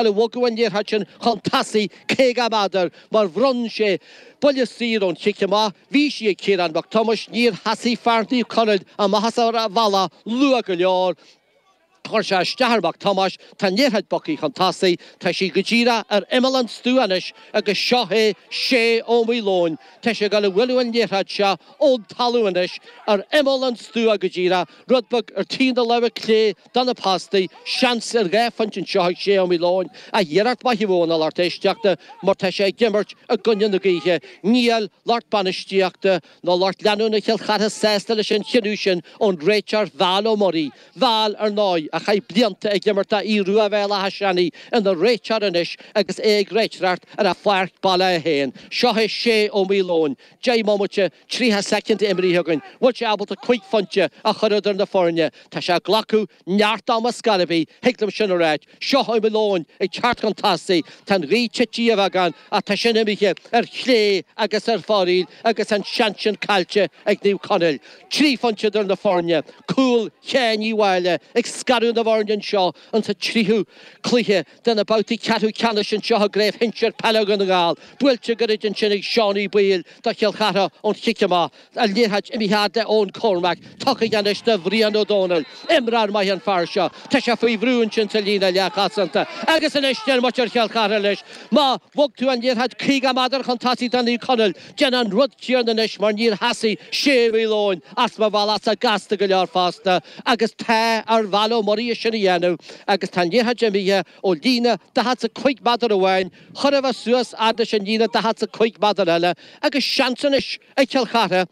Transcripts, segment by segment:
a bhogadh an liathróid sin chun tosaigh caoga méadar mar bhronn sé buille saor ón chic amach bhí sí ag Ciarán Mac Tomáis Níor sheasaigh fear Naomh Conaill amach as an bhealach luath go leor chuir sé isteach ar Mhac Tomáis Tá an liathróid bogtha chun tosaigh Tá sí go díreach ar imeall an stua anois agus seo é Shea Ó Maoileoin Tá sé ag dul a bhualadh an liathróid seo ón talamh anois ar imeall an stua go díreach rud beag ar thaobh na láimhe clé De na postaí, seans ar dhá phointe anseo ag Shea Ó Maoileoin, ach iarracht mhaith a bhí ann a lucht éisteachta, mar tá sé ag imirt i gcoinne na gaoithe. Níl lucht bainistíochta ná lucht leanúna Chill Chartha sásta leis an chinneadh sin ón réiteoir Val Ó Muirí, Val, ar ndóigh, a chaith blianta ag imirt do Aodh Rua Bhéal Átha Seanaidh, ina réiteoir anois agus é ag réiteoireacht ar a pháirc baile fhéin. Seo é Shea Ó Maoileoin. 10 mbomaite 30 soicind imrithe againn, bhfuil sé ábalta cúig phointe a chur idir na foirne. Tá sé ag glacadh neart ama ar scor ar bith, thig liom sin a ráit. Seo Ó Maoileoin ag teacht chun tosaigh. Tá an ghaoth tite beagán ach tá sin imithe ar chlé agus ar fóraoil agus an seans sin caillte ag Naomh Conaill. Trí phointe idir na foirne. Cúl Sheáin Uí Mháille ag scaradh na bhfoirne anseo insa tríú cluiche. de na babhtaí ceathrú ceannais anseo i gCraobh Shinsir Peile Dhún na nGall, buailte go hard ansin ag Seánie Boyle do Chill Chartha ón chic amach, an liathróid imithe fhad le Eoin Cormack, tugtha anois do Bhrian Ó Dónaill. Imreoir maith an fear seo. Tá sé faoi bhrú ansin sa líne leathchosanta agus anois Diarmuid ar Chill Chartha leis. Má bhog tú an liathróid 50 méadar chun tosaigh do Naomh Conaill, Déan an rud céanna anois, mar níor sheasaigh Shea Ó Maoileoin as an bhealach as a gasta go leor fosta, agus tá ar Val Ó Muirí sin a dhéanamh, agus tá an liathróid imithe ón líne daichead 's a cúig méadar amháin, chóir a bheith suas fhad leis an líne daichead 's a cúig méadar eile, agus seans anois ag Cill Chartha,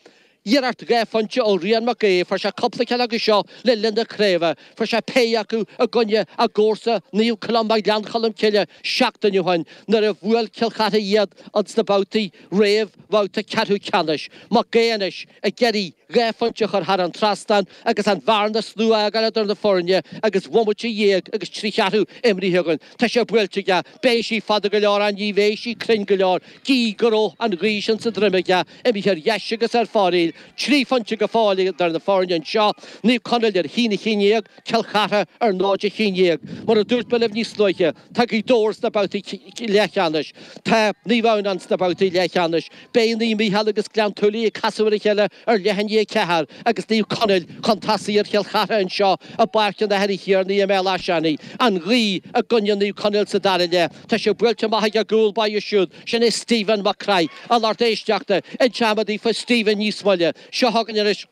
Iarracht dhá phointe ó Rian Mac Aodha, fuair sé cúpla ceann acu seo le linn na craoibhe, fuair sé péire acu i gcoinne a gcomharsa Naomh Columba Ghleann Cholm Cille seachtain ó shin nuair a bhuail Cill Chartha iad an sna babhtaí réamhbhabhta ceathrú ceannais. Mac Aodha anois ag iarraidh dhá phointe a chur thar an trasnán agus an bhearna is lú a fhágáil idir na foirne agus bhomaite dhéag agus trí cheathrú imrithe againn. Tá sé buailte aige, beidh sí fada go leor ach ní bheidh sí cruinn go leor gidh go raibh an ghaoth sin sa droim aige. Imithe ar dheis agus ar fóraoil, trí phointe go fóill idir na foirne anseo, Naomh Conaill ar a haon a haon déag, Cill Chartha ar náid a haon déag. Mar a dúirt mé libh níos luaithe, tá Gaoth Dobhair sna babhtaí leathcheannais. Tá Naomh Adhamhnáin sna babhtaí leathcheannais. Beidh Naomh Mícheál agus Gleann tSúilí ag casadh ar a chéile ar leath i ndiaidh a 4 agus Naomh Conaill chun tosaigh ar Chill Chartha anseo i bPáirc an Athair Uí Thiarnaigh i mBéal Átha Seanaidh. An ghaoth i gcoinne Naomh Conaill sa dara leath. Tá sé buailte amach ag a gcúl báire siúd, sin é Stephen Mac Craith, a lucht éisteachta, inseoidh mé daoibh faoi Stephen níos moille. Seo chugainn anois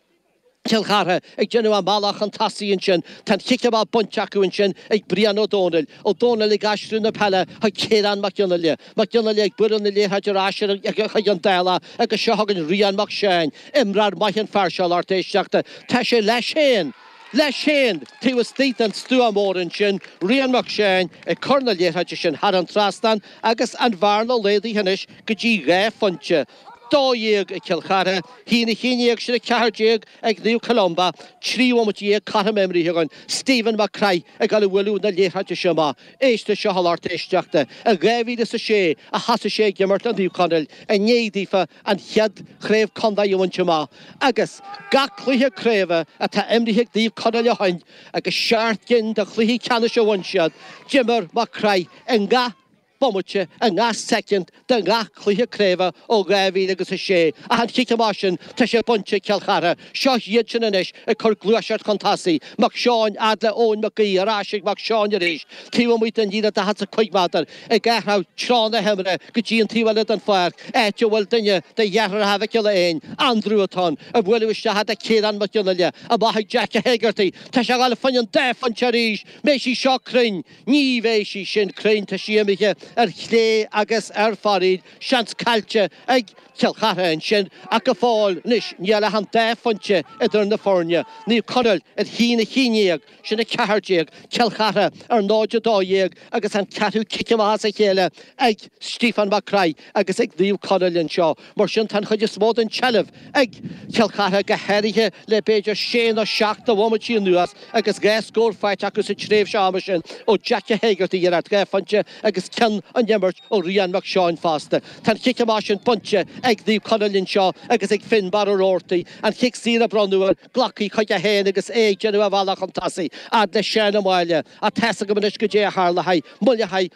Cill Chartha ag déanamh a mbealach chun tosaigh ansin. Tá an chic amach bainte acu ansin ag Brian Ó Dónaill. Ó Dónaill ag aistriú na peile chuig Ciarán Mag Fhionnaile. Mag Fhionnaile ag bualadh na liathróide ar ais chuig an Dálach agus seo chugainn Rian Mac Seáin. Imreoir maith an fear seo, a lucht éisteachta. Tá sé leis féin. Leis féin, taobh istigh den stua mór ansin, Rian Mac Seáin ag cur na liathróide sin thar an trasnán agus an bhearna laghdaithe anois go dtí dhá phointe, dó dhéag ag Cill Chartha, a haon a haon déag sin a ceathair déag ag Naomh Columba, trí bhomaite dhéag cothrom imrithe againn, Stephen Mac Craith ag dul a bhualadh na liathróide sin amach, éist leis seo a lucht éisteachta, i 2006 a thosaigh sé ag imirt le Naomh Conaill i ndiaidh daofa an chéad chraobh contae a bhaint amach agus gach cluiche craoibhe atá imrithe ag Naomh Conaill ó shin agus seacht gcinn de chluichí ceannais a bhain siad, d'imir Mac Craith i ngach bomaite, i ngach soicind, de ngach cluiche craoibhe ó 2000 agus a sé ach an chic amach sin tá sé bainte ag Cill Chartha. Seo iad sin anois ag cur gluaiseacht chun tosaigh, Mac Seáin, fhad le Eoin Mac Aoidh, ar ais ag Mac Seáin arís, taobh amuigh den líne daichead is a cúig méadar, ag athrú treo na himeartha go dtí an taobh eile den pháirc, áit a bhfuil duine de dheartháireacha Mhic Giolla Éain, Andrew, atá ann á bualadh isteach fhad le Ciarán Mag Fhionnaile, amach ag Jack Hegarty, tá sé ag dul fá choinne an dá phointe arís, an mbeidh sí seo cruinn, ní bheidh sí sin cruinn, tá sí imithe ar chlé agus ar fóraoil, seans caillte, ag Cill Chartha ansin, ach go fóill anois níl ach an dá phointe idir na foirne, Naomh Conaill ar a haon a haon déag, sin 14, Cill Chartha ar 0 12 agus an ceathrú cic amach as a chéile ag Stiofán Mac Craith agus ag Naomh Conaill anseo. Mar sin tá an chuid is mó den tseilbh ag Cill Chartha, go háirithe le b'fhéidir sé nó seacht de bhomaití anuas agus dhá scór faighte acu sa tréimhse ama sin ó Jack Hegarty iarracht dhá phointe agus ceann ón imirt ó Rian Mac Seáin fosta. Tá an chic amach sin bainte ag Naomh Conaill anseo agus ag Finbarr Roarty, an chic saor a bronnadh air, á glacadh chuige féin agus é ag déanamh a bhealach chun tosaigh fhad le Seán Ó Máille, á teascadh agam anois go dtí a tharla haghaidh, moille haghaidh,